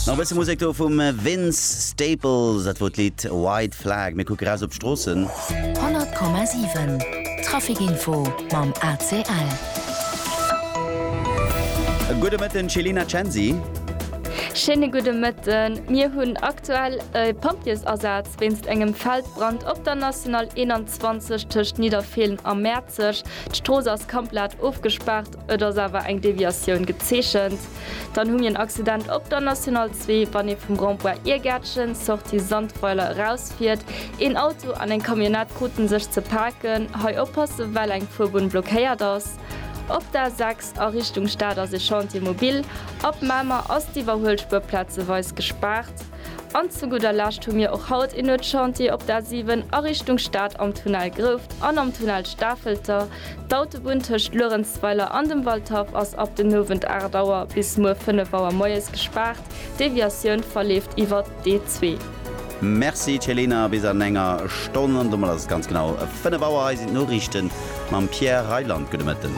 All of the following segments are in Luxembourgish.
Nach e bësse Musek do vum Vince Staples, dat wor d'Lidd White Flag. Mir kucke raus op d'Stroossen. 100,7 Traficinfo mam ACL. E gudde Mëtten, Céline Censi. Schéine gudde Mëtten. Mir hunn aktuell e Pompjeesasaz wéinst engem Feldbrand op der National 21 tëscht Nidderfeelen a Mäerzeg. D'Strooss ass komplett ofgespaart. et ass awer eng Deviatioun gezeechent, dann hu mir en Accident op der National 2, wann ee vum Rond-point Irgäertchen, Sortie Sandweiler, erausfiert. Een Auto an eng Camionnette krute sech ze paken. Hei oppasse well eng Fuerbunn blockéiert ass. Op der A6 a Richtung Stad ass ee Chantier mobil. Ab Mamer ass d'Iwwerhuelspur plazeweis gespaart. An zu gudder Lescht hu mir och haut een Nuetschantier op der A7 a Richtung Stad am Tunnel Grouft an am Tunnel Stafelter. D'Autobunn tëscht Luerenzweiler an dem Waldhaff ass ab den Owend 8 Auer bis muer 5 Auer moies gespaart. D'Deviatioun verleeft iwwert d'E2. Merci Céline, bis an enger Stonn an domat ass et ganz genau 5 Auer. Hei sinn d'Noriichten mam Pierre Reyland. Gudde Mëtten.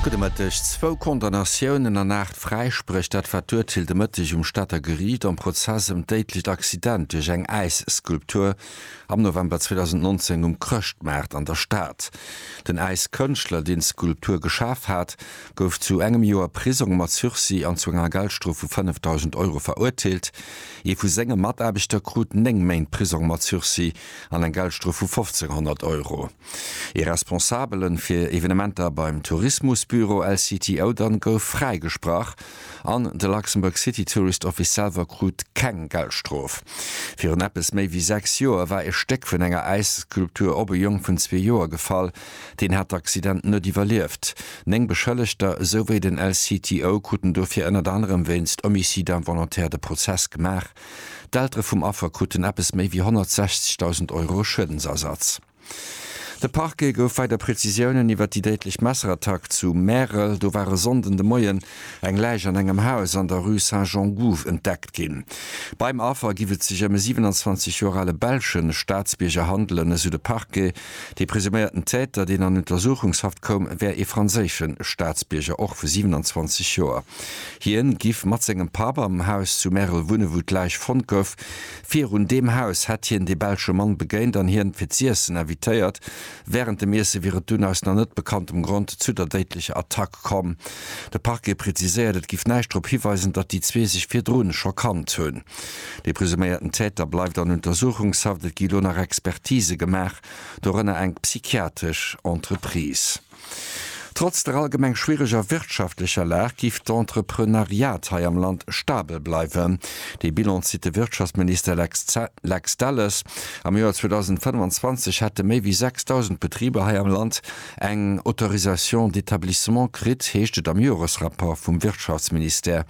Gudde Mëtteg. Zwou Condamnatiounen an aacht Fräispréch, dat war d'Urteel de Mëtteg um Stater Geriicht am Prozess ëm d'déidlecht Accident duerch eng Äisskulptur am November 2019 um Chrëschtmaart an der Stad. Den Äiskënschtler, deen d'Skulptur geschaf hat, gouf zu engem Joer Prisong mat Sursis an zu enger Geldstrof vu 5.000 Euro verurteelt. Ee vu senge Mataarbechter krut néng Méint Prisong mat Sursis an eng Geldstrof vu 1.500 Euro. Ee Responsabele fir Evenementer beim Tourismusbüro LCTO dann gouf fräigesprach an de Luxembourg City Tourist Office selwer krut keng Geldstrof. Virun eppes méi wéi sechs Joer war ee Stéck vun enger Äisskulptur op e Jong vun zwee Joer gefall. Deen hat d'Accident net iwwerlieft. Néng Beschëllegter esouwéi den LCTO kruten dofir ënnert anerem wéinst Homicide involontaire de Prozess gemaach. D'Eltere vum Affer kruten eppes méi wéi 160.000 Euro Schuedensersatz. De Parquet gouf weider Prezisiounen iwwer déi déidlech Messerattack zu Märel, do war e Sonnden de Moien eng Läich an engem Haus an der Rue Saint-Jean-Gouv entdeckt ginn. Beim Affer giff et sech ëm e 27 Joer ale belsche Staatsbierger handelen, esou de Parquet. Dee presuméierten Täter, deen an Untersuchungshaft koum, wär ee franséische Staatsbierger, och vu 27 Joer. Hien giff mat sengem Papp am Haus zu Märel wunnen, wou d'Läich fonnt gouf. Virun deem Haus hätt hien dee belsche Mann begéint an hien fir z'iessen invitéiert. Wärend dem Iesse wier et dunn aus nach net bekanntem Grond zu der déidlecher Attack komm. De Parquet preziséiert, et giff näischt drop hiweisen, datt déi zwee sech virdrun scho kannt hunn. De presuméierten Täter bleift an Untersuchungshaft. Et gi lo nach Expertise gemaach, dorënner eng psychiatresch Entreprise. Trotz der allgemeng schwiereger wirtschaftlecher Lag giff d'Entrepreneuriat hei am Land stabel bleiwen. Dee Bilan zitt de Wirtschaftsminister Lex Delles. Am Joer 2025 hätte méi wéi 6.000 Betriber hei am Land eng Autorisation d'établissement kritt, heescht et am Joresrapport vum Wirtschaftsministère.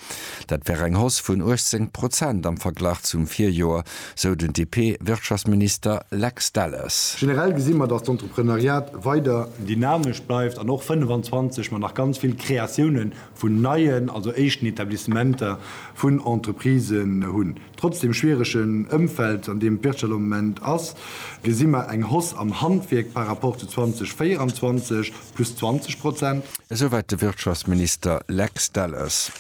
Dat wär eng Hausse vun 18 Prozent am Verglach zum Virjoer. sou den DP-Wirtschaftsminister Lex Delles. Generell gesi mer, datt d'Entreprenariat weider. Dynamesch bleift an och 25 mat nach ganz vill Kreatiounen vun neien, also éischten Etablissementer vun Entreprisen hunn. Trotz dem schwieregen Ëmfeld, an deem d'Wirtschaft am Moment ass, gesi mer eng Hausse am Handwierk par rapport zu 2024. plus 20 Prozent. Esouwäit de Wirtschaftsminister Lex Delles.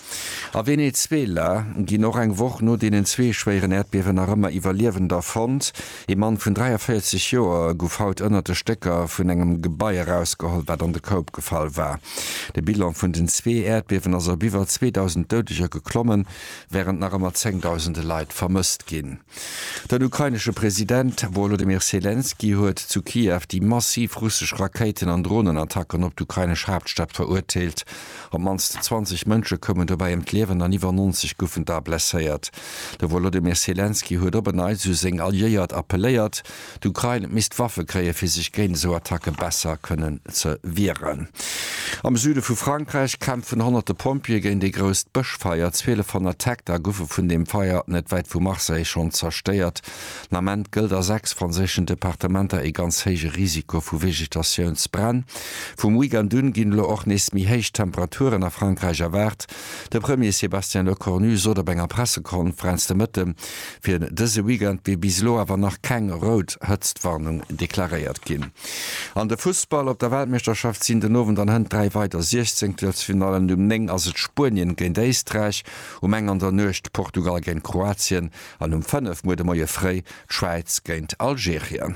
A Venezuela ginn och eng Woch no deenen zwee schwéieren Äerdbiewen nach ëmmer Iwwerliewender fonnt. Ee Mann vun 43 Joer guff haut ënnert de Stécker vun engem Gebai erausgeholl, wat an de Koup gefall war. De Bilan vun den zwee Äerdbiewen ass op iwwer 2.000 Doudeger geklommen, wärend nach ëmmer zéngdausende Leit vermësst ginn. Den ukrainesche President Wolodymyr Selenskyj huet zu Kiew déi massiv russesch Rakéiten an Dronenattacken op d'ukrainesch Haaptstad verurteelt. Op d'mannst 20 Mënsche koumen dobäi ëm d'Liewen an iwwer 90 goufen da blesséiert. De Wolodymyr Selenskyj huet op en Neits u seng Alliéiert appelléiert, D'Ukrain misst Waffe kréien, fir sech géint esou Attacke besser kënnen ze wieren. Am Süde vu Frankräich kämpfen honnerte Pompjeeë géint ee grousst Bëschfeier. 1200 Hektar goufe vun deem Feier net wäit vu Marseille schonn zerstéiert. Den Ament gëllt a sechs franséischen Departementer ee ganz héije Risiko vu Vegetatiounsbränn. Vum Weekend un ginn elo och nees méi héich Temperaturen a Frankräich erwaart. De Premier Sébastien Lecornu sot op enger Pressekonferenz de Mëtte, fir dëse Weekend wier bis elo awer nach keng rout Hëtztwarnung deklaréiert ginn. An de Fussball, Op der Weltmeeschterschaft sinn den Owend an Hënt dräi weider Siechzenktelfinallen. Um 9 ass et Spuenien géint Éisträich, um eng an der Nuecht Portugal géint Kroatien. An um 5 muer de Moie fréi d'Schwäiz géint Algerien.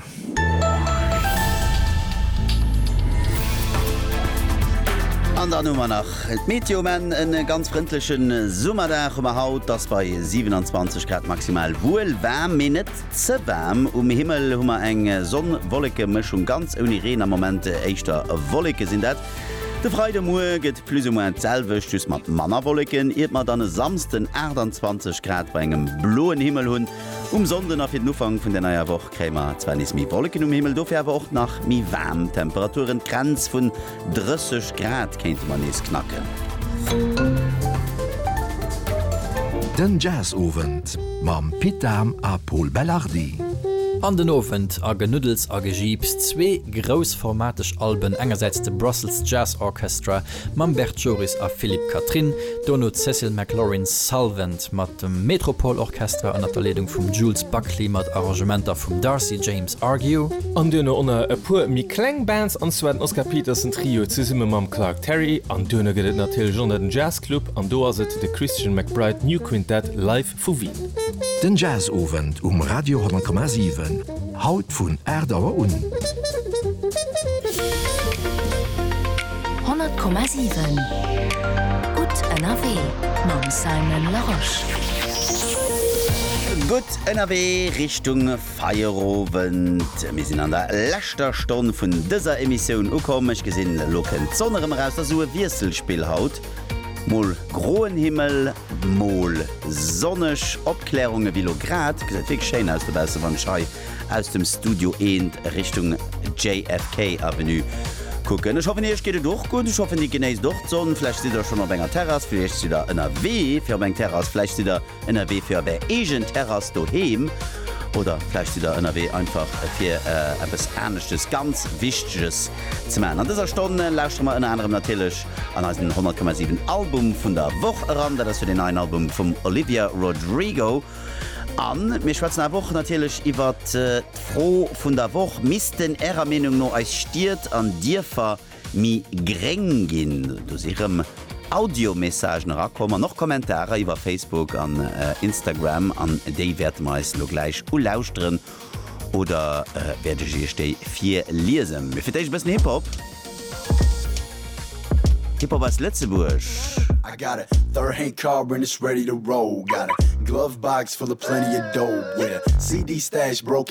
An dann hu mer nach d'Meteo. Mä e ganz frëndleche Summerdag hu mer haut. Et ass bei 27 Grad maximal wuel waarm, mee net ze waarm. Um Himmel hu mer eng Sonn-Wolleke-Mëschung, ganz ouni Reen am Moment, éischter Wolleke sinn dat. De Freidemue gëtt. Plus ou moins d'selwecht, just mat manner Wolleken, iert mer dann e Samsden 28 Grad bei engem bloen Himmel hunn. Um Sonnden a fir den Ufank vun der neier Woch kréie mer zwar nees méi Wolleken um Himmel, dofir awer och nach méi waarm Temperaturen. D'Grenz vun 30 Grad kéinte mer nees knacken. Den Jazzowend mam Pit Dahm a Pol Belardi. An den Owend a Genuddels a Gejiips, zwee. groussformateg Alben, engersäits de Brussels Jazz Orchestra mam Bert Joris a Philippe Catherine, dono d'Cecil McLorin Salvant mat dem Metropole Orchestra ënnert der Leedung vum Jules Buckley mat Arrangementer vum Darcy James Argue. An duerno onner e puer méi kleng Bands, an zwar den Oscar Peterson Trio zesumme mam Clark Terry, an duerno gëtt et natierlech onner den Jazz Club, an do ass et de Christian McBride New Quintet Live Vu Wien. Den Jazzowend um Radio 10,7, haut vun 8 Auer un. 100,7 gutt ënnerwee mam Simon Larosche. Gutt ënnerwee Richtung Feierowend. Mir sinn an der leschter Stonn vun dëser Emissioun ukomm. Ech gesinn, elo kënnt d'Sonn erëm eraus. Dat ass esou e Wiesselspill haut. Mol groen Himmel, mol sonneg Opklärung. Ewéi lo grad, gesäit wierklech schéin aus dobaussen, wann ech hei aus dem Studio eent Richtung JFK Avenue kucken. Ech hoffen iech geet et och gutt. Ech hoffen dir genéisst och d'Sonn. Vläicht sidd der schonn op enger Terrass, vläicht sidd der ënnerwee fir op eng Terrass, vläicht sidd der Ënnerwee fir op Är eegen Terrass doheem oder vläicht sidd Der ënnerwee einfach fir eppes aneschtes ganz Wichteges ze maachen. An dëser Stonn lauschtere mer ënner anerem natierlech an eisen 100,7 Album vun der Woch eran. Dat ass jo deen neien Album vum Olivia Rodrigo. A mir schwätzen awer och natierlech iwwert d'Fro vun der Woch, Missten Ärer Meenung no eis Stied an Dierfer méi gréng ginn. Do si rëm Audiomessagen erakomm an och Kommentarer iwwer Facebook an Instagram an déi wäerte mer eis elo gläich ulauschteren oder wäert ech iech déi virliesen. Mee fir d'éischt e bëssen Hip-Hop. Hip-Hop aus Lëtzebuerg. I got a third hand car and it's ready to roll Got a glove box full of plenty of dope With a CD stash broke